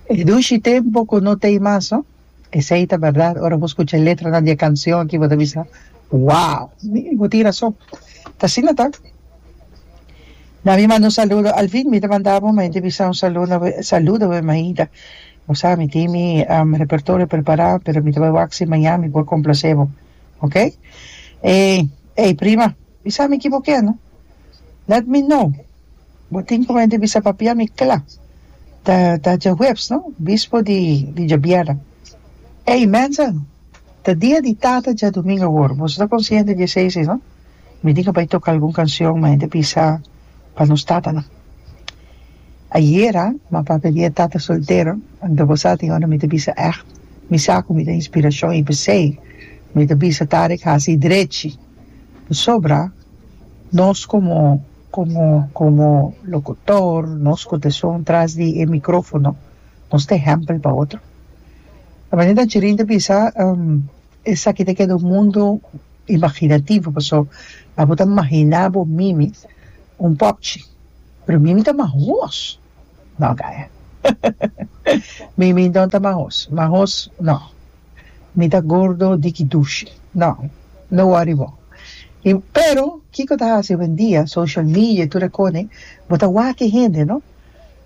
E dushi tempo ku no ta ei mas no. Esei ta berdad, ora bo skucha e letranan di e kanshon aki bo ta bisa, Wow! Bo tin rason, ta asina ta. Na mi manda un saludo, al fin mi ta manda bo, mi ta bisa un saludo saludo bo e Maida. Bo sa mi tin mi repertorio prepará, pero mi ta bai wak si maña mi por komplasé bo. Oke? Ey, ey prima. Bisa mi kiboké no? Let me know Bo tin como hende bisa pa pia mi cla ta ta djahuebs no bispo di di djabierna Ey mensen ta dia di tata dja domingo awor boso ta consciente di esey si no mi tin a bay toca algun cancion ma hende bisa pa nos tatanan Ayera ma papia dia e tata soltero anto bo sa tin hora mi ta bisa echt mi sa cu mi ta inspiracion y p'esey mi ta bisa Tarek haci drechi. Pasobra nos komo komo komo lokutor, nos ku ta shon tras di e mikrofono, nos ta ehèmpel pa otro. Ta mester ta chirin ta bisa, esaki ta keda un mundu imaginativo, paso abo ta mahiná bo mimi un pòpchi, pero mimi ta mas hos, nò ka, mimi no ta mas hos, mas hos nò, Mi ta gordo di ki dushi. No. No worry bo. I pero kiko ta hasi owendia, social media i tur e kone, bo ta wak e hende, no?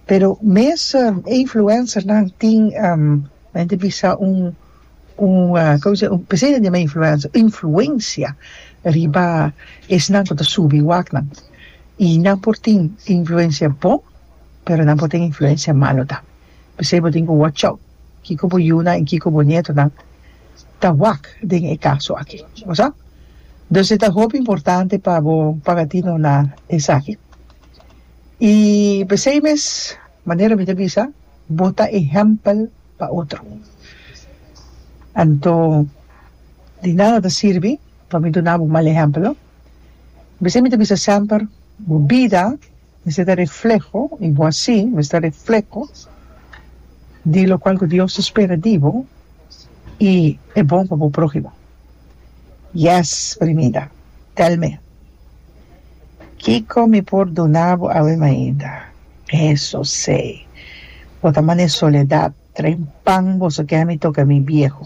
Pero mes influencernan tin, mi a yenta bisa un, un, kiko se dici, p'esei nan yama influencer, influencia riba esnan ku ta subi waknan. I nan por tin influencia bon, pero nan por tin influencia malo tam. P'esei bo tin ku watch out kiko bo yunan i kiko bo nietonan ta wak den e kaso aki. Bo sa? Dus e ta hopi importante pa bo pagatino na esaki. I p'esei mes manera mi ta bisa, bo ta ehèmpel pa otro. Anto di nada ta sirbi pa mi duna bo mal ehèmpel no. P'esei mi ta bisa semper, bo bida. Esei ta refleho i bo asi mester refleho di lokual ku Dios ta spera di bo i e bon pa bo prohimo. Yes primida tell me kiko mi por duna bo awe mainda eso sei bo ta mane soledad trae un pan boso kemi toka mi bieho.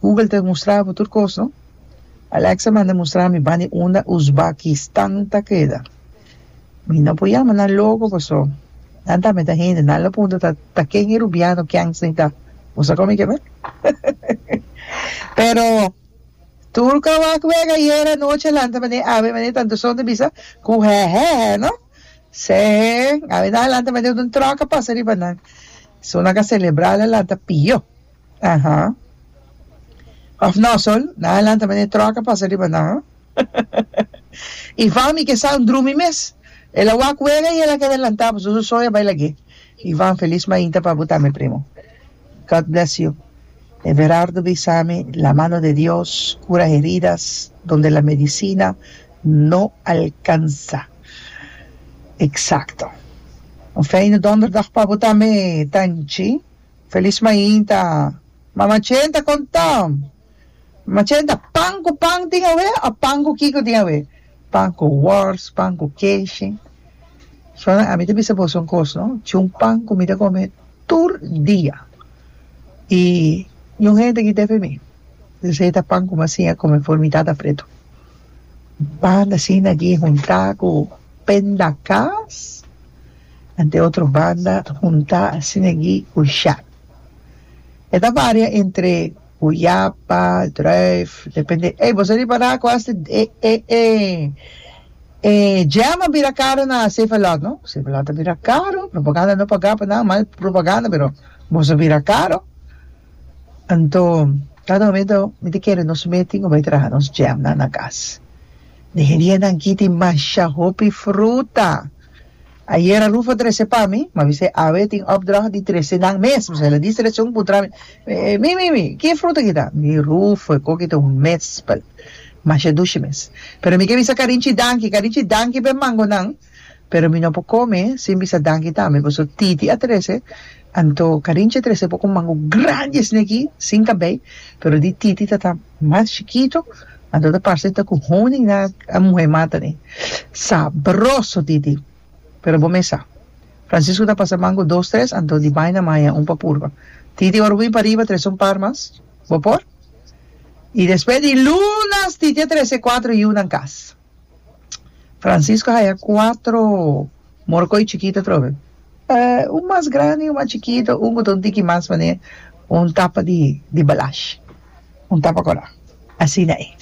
Google ta mustra bo tur kos no. Alexa manda mustra mi bandi unda Uzbakistan ta keda. Mi no por yama nan loko paso nan tambe ta hende, nan lo punta ta ta ken e rubiano ken sin ta. Bo sa kon mi ke bai? Pero tur kawak wek ayer anochi a lanta bende awe bende tantu son ta bisa ku hehehe no. Se awe nan a lanta bende unda un truck a pasa riba nan. So nan ka celebra ala lanta pio. Aha. Of no Sol, nan a lanta manera e troka pasa riba nan. I Vami ke sa un drumi mes. El a wak wega i el a keda lanta pasobra su soy a bai lag'é. Ivan, Felis mainta pa bo tambe primo. God bless you. Everardo bisa mi la mano de Dios kura heridas donde la medisina no alkansa. Eksakto. Un feine donderdag pa bo tambe Tanchi. Felis mainta, Mama Chen ta kontan! Mama Chen ta, Pan ku pan tin awe o pan ku kiko tin awe? Pan ku wors, pan ku keshi. Sona, ami ta bisa boso un kos, no? Chun pan ku mi ta kome tur dia. I e un hende a kita ef mi. Esei ta pan ku mi a siña kome for mi tata pretu. Pan asina aki huntá ku pendakas. Ante otro banda hunta sinegi cu Sjaak. E ta varia entre guyapa, druif, depende. Ey, boso riba na cu hasta e, e, e, e jam a bira caro na Savelot, no? Savelot a bira caro, propaganda no paga pa nan, mal propaganda, pero boso bira caro. Anto, cada momento mi ta kere nos mee tin cu bay traha nos jamnan na cas. Negeria nan giti masha hopi fruta. Ayera Rufo trese pa mi, mi a bisa e awe tin opdracht di trese nan mes. Mi sali di seleccion, puntra mi, Mi, mi, mi, ki e fruta aki ta? Mi di, Rufo, e coki ta un mespel. Masha dushi mes. Pero mi ke bisa Carinchi danki. Carinchi danki pa e mangonan, pero mi no por come sin bisa danki tambe, pasobra Titi a trese Anto Carincha trece poco mango grandi esne aki sin cabey pero di titi tata mas chikito anto ta parce ta cu honing nan a muhe mata ne. Sabroso titi pero bo mes sa Francisco ta pasa mango dos tres anto di bay na maya un pa purba. Titi ora bo bin pariba trece un par mas bo por? Y despues di lunas titi a trece cuatro yiu nan cas. Francisco haya cuatro morcoy chikito atrobe. Eh, un mas grandi y un mas chikito, un cu ta un tiki mas manera un tapa di, di balash, un tapa cora. Asina e.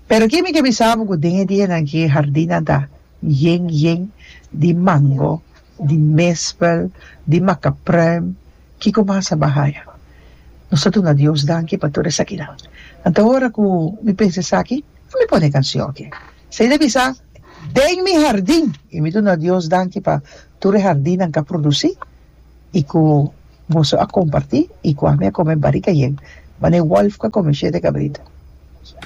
Pero ki mi ke bisabo cu den e dianan aki e hardinnan ta yen, yen di mango, di mespel, di macapruim, kico mas a ba haya. Nos ta duna Dios danki pa tur esakinan. Anto ora cu mi pensa esaki. Cu mi pone e cancion aki? Sa y ta bisa, Den mi hardin, y mi duna Dios danki pa tur e hardinnan ca produci y cu boso a comparti y cu ami a come barica yen, ma ni wolf ca come shete cabrito.